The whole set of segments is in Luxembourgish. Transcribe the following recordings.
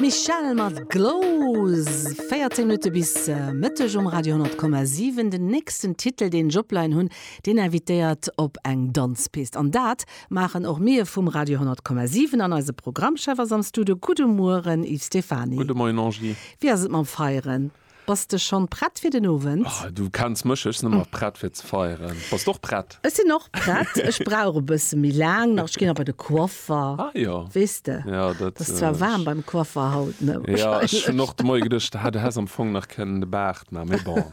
D'Michelle mat Glows, 14 Minutte bis Mëtteg um Radio 10,7. Den nächsten Titel, deen ech opleien hunn, deen invitéiert op eng Danzpist. An dat maachen och mir vum Radio 10,7. An eise Programmchef ass am Studio. Gudde Mueren, Yves Stephany. Gudde Moien, Angie. Wéi ass et mam Feieren? Bass de schonn prett fir den Owend? Ah, du kenns mech, ech sinn ëmmer prett fir ze feieren. Bass d'och prett? Ech sinn och prett, ech brauch e bësse méi laang nach, ech ginn nach bei de Coiffer. Ah jo. Weess de, Ja, dat et ass zwar waarm beim Coiffer haut, ne? Ja, ech hunn och de Moie geduecht, ha du häss am Fong nach kënnen de Baart maachen, mee bon.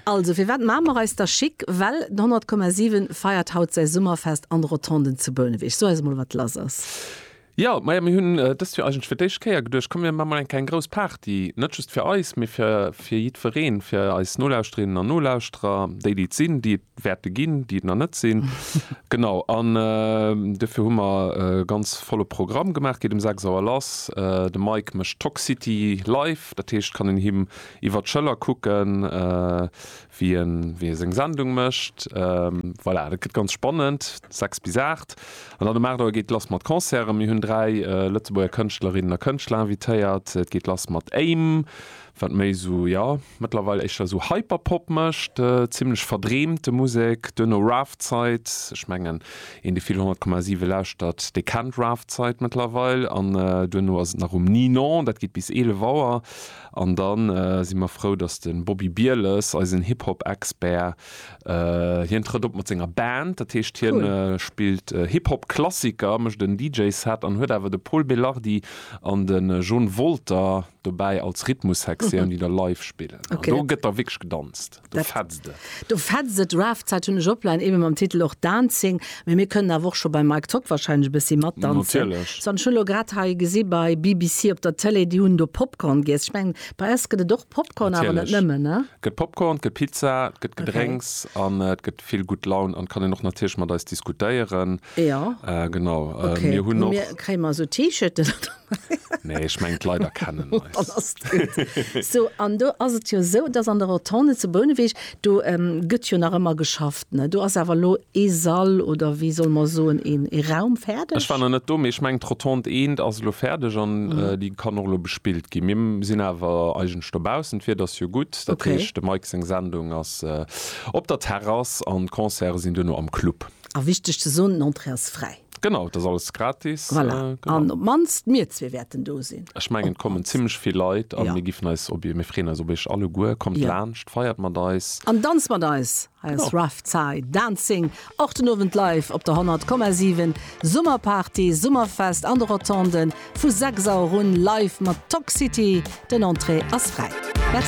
Also, firwat maache mer eis da schick? Well den 100,7 feiert haut säi Summerfest an de Rotonden zu Bouneweg. So eis emol, wat lass ass. Jo, maja mir hunn dëst Joer eigentlech fir d'éischt Kéier geduecht, komm mir maan mol eng keng grouss Party, net just fir eis, mee fir fir jiddwereen, fir eis Nolauschterinnen an Nolauschterer, déi déi et sinn, déi et wäerte ginn, déi et nach net sinn, genau an dofir hu mer e ganz volle Programm gemaach, geet um 6 Auer lass, de Mike mécht Toxcity live, dat heescht kann een him iwwert d'Schëller kucken, wien wéi seng Sendung mécht. Voilà, dat gëtt ganz spannend, 6 bis 8. An dann um 8 Auer geet et lass mat Concerten. Mir hunn dräi Lëtzebuerger Kënschtlerinnen a Kënschtler invitéiert. Et geet lass mat Aim, wat méi esou, jo, mëttlerweil éischter esou Hyperpop mécht, zimmlech verdreemte Musek. Duerno Rafzeit, ech mengen, een, dee vill 100,7 lauschtert, dee kennt Rafzeit mëttlerweil. An duerno ass et nach um Ninon, dat geet bis 11 Auer. An da si mer frou, dass de Bobby Bieles, eisen Hip-Hop-Expert, hien trëtt op mat senger Band. Dat heescht, hien spillt Hip-Hop-Klassiker, mécht en DJ-Set an huet awer de Pol Belardi an de John Wolter dobäi als Rhythmussektioun, déi da live spillen. An do gëtt da wierklech gedanzt. Do fetzt et. Do fetzt et. Rafzeit hunn ech opline, eebe mam Titel och Dancing. Mee mir kënnen awer och scho beim Mike Tock wahrscheinlech e bëssi matdanzen. Natierlech. So, an ech hunn elo grad hei gesi bei BBC op der Tëlee, déi hunn do Popcorn giess. Ech mengen, bei eis gëtt et och Popcorn, awer net Natierlech. nëmmen, ne? Et gëtt Popcorn, et gëtt Pizza, et gëtt Okay. Gedrénks an et gëtt vill gutt Laun an et kann een och natierlech mat eis diskutéieren. Jo. Genau. Okay. Mir hunn Hu mir, och. kréie mer esou T-Shirten? Nee, ech mengen d'Leit erkennen eis. Dann ass et gutt. So, an do ass et jo esou, dass an der Rotonde zu Bouneweg, do gëtt jo nach ëmmer geschafft, ne? Do ass awer elo ee Sall, oder wéi solle mer soen, een ee Raum fäerdeg. Ech war nach net do, mee ech mengen d'Rotonde eent ass elo fäerdeg an déi kann och elo bespillt ginn. Mir sinn awer eigentlech dobaussen, d'Wieder ass jo gutt, dat heescht dem Mike seng Sendung ass op der Terrass an d'Concerte sinn duerno am Club. A wichteg ze soen, d'Entrée ass fräi. Genau, dat ass alles gratis. Voilà. Äh, genau. An op mannst mir zwee wäerten do sinn. Ech mengen, et kommen zimlech vill Leit an ja. mir giffen eis op mir freeën eis op eech alle guer. Kommt ja. laanscht, feiert mat eis. An danzt mat eis. Hei ass genau. Rough Zai Dancing. Och den Owend live op der 100,7 Summerparty, Summerfest an de Rotonden vu 6 Auer un live mat Toxity. Den Entrée ass fräi. Merci.